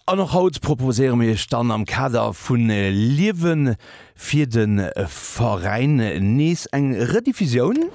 An och haut proposéiere mir iech dann am Kader vu Liewe fir de Veräin nees eng Rediffusioun.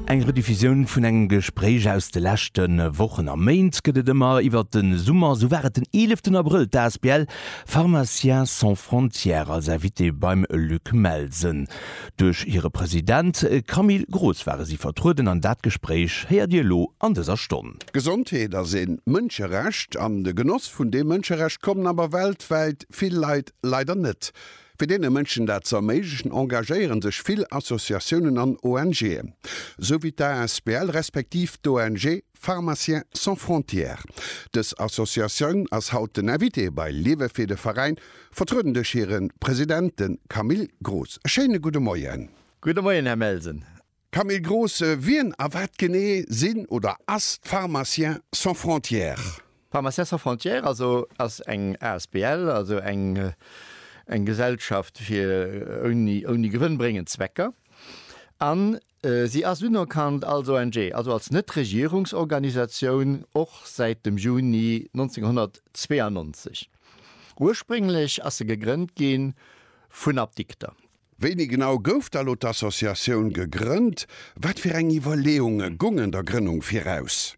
Eng Rediffusioun vun engem Gespréich aus de leschte Wochen a Méint gëtt et ëmmer iwwert de Summer. Esou war et den 11 en Abrëll d'ASBL Pharmaciens sans frontières als Invitée beim Luc Melsen. Duerch hire President Camille Gross ware si vertrueden an dat Gespréich héiert Dir elo an dëser Stonn. D'Gesondheet ass ee Mënscherecht an de Genoss vun deem Mënscherecht kommen awer weltwäit vill Leit leider net. Fir deene Mënschen dat ze erméiglechen, engagéiere sech vill Associatiounen an ONGen, esou wéi d'asbl respektiv d'ONG Pharmaciens sans frontières, dës Associatioun ass haut den Invité bei Liewe fir de Veräin, vertrueden duerch hire President, de Camille Groos. E schéine gudde Moien. Gudde Moien, Här Melsen. Camille Groos, wien a wat genee sinn oder ass d'Pharmaciens sans frontières? D'Pharmaciens sans frontières also ass eng asbl, also eng Gesellschaft fir ouni gewënnbréngend Zwecker. An Si ass unerkannt als ONG, also als Net-Regierungsorganisatioun, och säit dem Juni 1992. Ursprénglech ass se gegrënnt gi vun Apdikter. Wéini genau gouf da lo d'Associatioun gegrënnt? Wat fir eng Iwwerleeunge gungen der Grënnung viraus?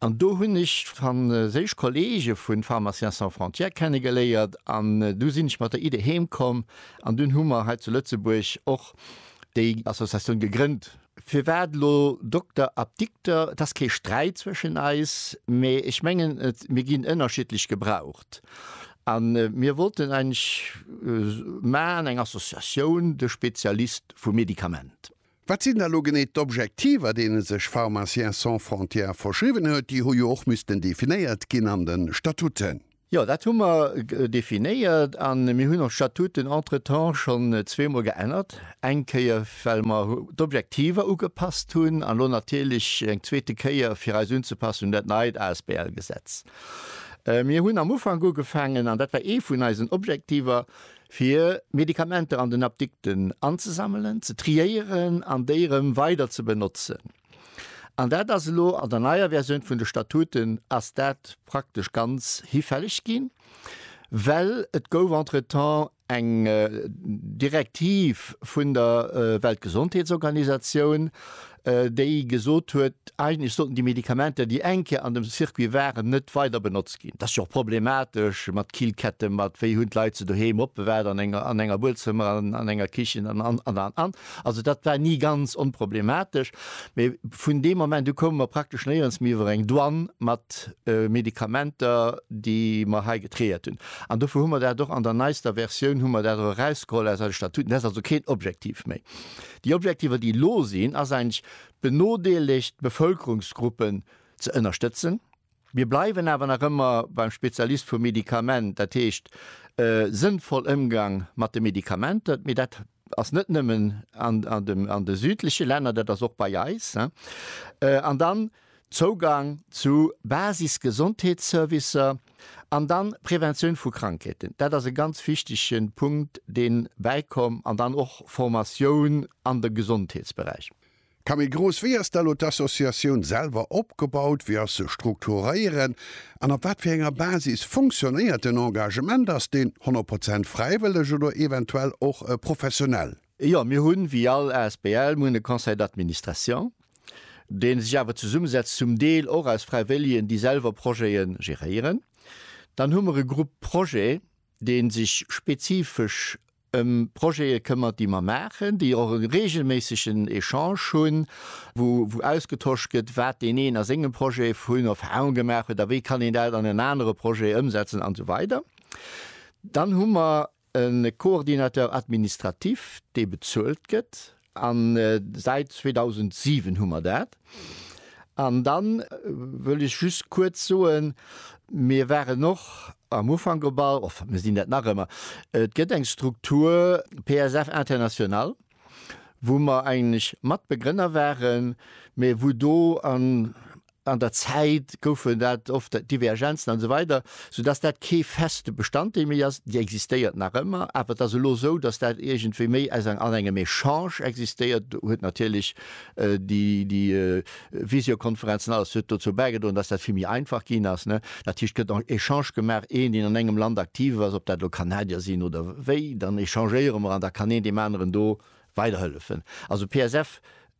An do hunn ech d'franséisch Kollege vu Pharmaciens sans frontières kennegeléiert an du sinn ech mat der Idee heem komm an dunn hu mer hei zu Lëtzebuerg och déi Associatioun gegrënnt. Firwat elo Dokter, Apdikter? Et ass kee Sträit zwëschen eis, mä ech mengen, mir ginn ënnerschiddlech gebraucht a mir wollten eigentlech, maan eng Associatioun de Spezialist vum Medikament. Wat sinn da lo genee d'Objektiver, deene sech Pharmaciens sans frontières verschriwwen huet? Déi hu jo och missten definéiert ginn an de Statuten. Jo, dat hu mer definéiert a mir hunn och d'Statuten entretemps schonn zweemol geännert. Eng Kéier, well mer d'Objektiver ugepasst hunn, an elo natierlech eng zweete Kéier, fir eis unzepassen un dat neit ASBL-Gesetz. Mir hunn am Ufank ugefaangen, an dat war ee vun eisen Objektiver, fir Medikamenter an den Apdikten anzesammelen, ze triéieren an déi erëm weider ze benotzen. An dat ass elo an der neier Versioun vun de Statuten ass dat praktesch ganz hifälleg ginn, well et gouf entretemps eng Direktiv vun der Weltgesondheetsorganisatioun, déi gesot huet, eigentlech sollten déi Medikamenter, déi eng Kéier an dem Circuit waren, net weider benotzt ginn. Et ass jo och problematesch mat Killketten, mat wéi hunn d'Leit se doheem opbewaart, an enger, an enger Buedzëmmer, an enger Kichen an, an, an, an, an. Also dat war ni ganz onproblematesch. Mee vun deem Moment u koume mer praktesch néierens méi iwwer eng Douane mat Medikamenter, déi mer hei getréiert hunn. An dofir hu mer dat och an der neister Versioun hu mer dat och erausgeholl aus eise Statuten. Dat ass also keen Objektiv méi. Déi Objektiver, déi elo sinn, ass eigentlech d'benodeelegt Bevëlkerungsgruppen ze ënnerstëtzen. Mir bleiwen awer nach ëmmer beim Spezialist vum Medikament, dat heescht sënnvoll Ëmgang mat de Medikamenter. Mee dat ass net nëmmen an de südleche Länner, dat ass och bei eis. An dann, Zougang zu Basis-Gesondheetsservicer an dann Preventioun vu Krankheeten, dat ass e ganz wichtege Punkt, dee bäikomm, an dann och Formatioun an de Gesondheetsberäich. Camille Gross, Wéi ass da elo d'Associatioun selwer opgebaut, wéi ass se strukturéieren an op wat fir enger Basis funktionéiert den Engagement? Ass deen 100 Prozent fräiwëlleg oder eventuell och professionell? Jo, mir hunn, wéi all Asbl, mir hunn e Conseil d'administration, dee sech awer zesummesetzt zum Deel och aus Fräiwëllegen, déi selwer Projete geréieren. Dann hu mer e Groupe projet, dee sech spezifesch ëm Projete këmmert, déi mer maachen, déi och e reegelméissegen Echange hunn, wou ausgetosch gëtt, wat deen een a sengem Projet vun Erfahrung gemaach huet a wéi kann een dat an en anere Projet ëmsetzen, an esou weider. Dann hu mer E Coordinateur administratif, dee bezuelt gëtt, an säit 2007 hu mer dat. An da wëll ech just kuerz soen, mir waren och am Ufank op all, enfin mir sinn dat nach ëmmer, et gëtt eng Struktur PSF International, wou mer eigentlech Matbegrënner waren, mä wou do an, An der Zäit goufen dat oft Divergenzen an esou weider, soudass dat kee feste Bestanddeel méi ass. Déi existéiert nach ëmmer, awer et ass elo esou, datt dat iergendwéi méi aus an engem Echange existéiert. Do huet natierlech déi Visiokonferenz an alles huet dozou bäigedroen, datt dat vill méi einfach ginn ass. Dat heescht, et gëtt en Echange gemaach, een, deen an engem Land aktiv ass, ob dat elo Kanadier sinn oder wéi, dann echangéiere mer an da kann een deem aneren do weiderhëllefen. Also PSF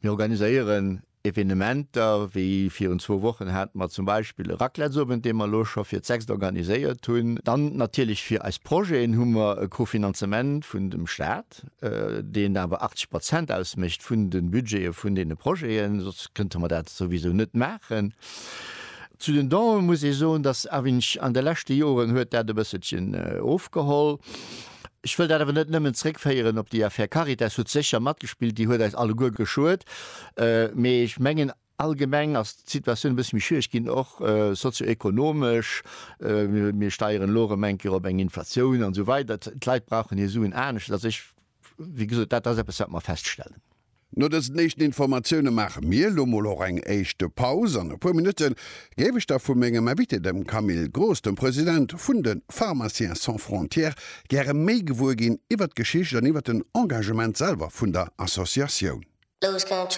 Mir organiséieren Evenementer, wéi virun zwou Wochen hate mer zum Beispill e Raclettesowend, dee mer elo scho fir d'sechst organiséiert hunn. Dann natierlech fir eis Projeten hu mer e Kofinanzement vun dem Staat, deen awer 80 Prozent ausmécht vun de Budgete vun deene Projeten, soss kënnte mer dat souwisou net maachen. Zu den Donen muss ee soen, dass AVINC an de leschte Joren huet dat e bësselchen ofgeholl. Ech wëll dat awer net nëmmen zréckféieren op déi Affär Caritas. Déi huet sécher matgespillt, déi huet eis alleguer geschuet. Mee ech mengen, allgemeng ass d'Situatioun e bësse méi schwiereg ginn, och sozio-ekonomesch. Mir steieren elo erëm eng Kéier op eng Inflatioun an esou weider. D'Leit brauchen hir Suen anescht. Also ech, wéi gesot, dat ass eppes, wat mer feststellen. No dësen éischten Informatioune maache mir elo mol och eng éischte Paus. An e puer Minutte géif ech da vu mengem Invité, dem Camille Gross, dem President vun de Pharmaciens sans frontières, gäre méi gewuer ginn iwwert d'Geschicht an iwwert den Engagement selwer vun der Associatioun.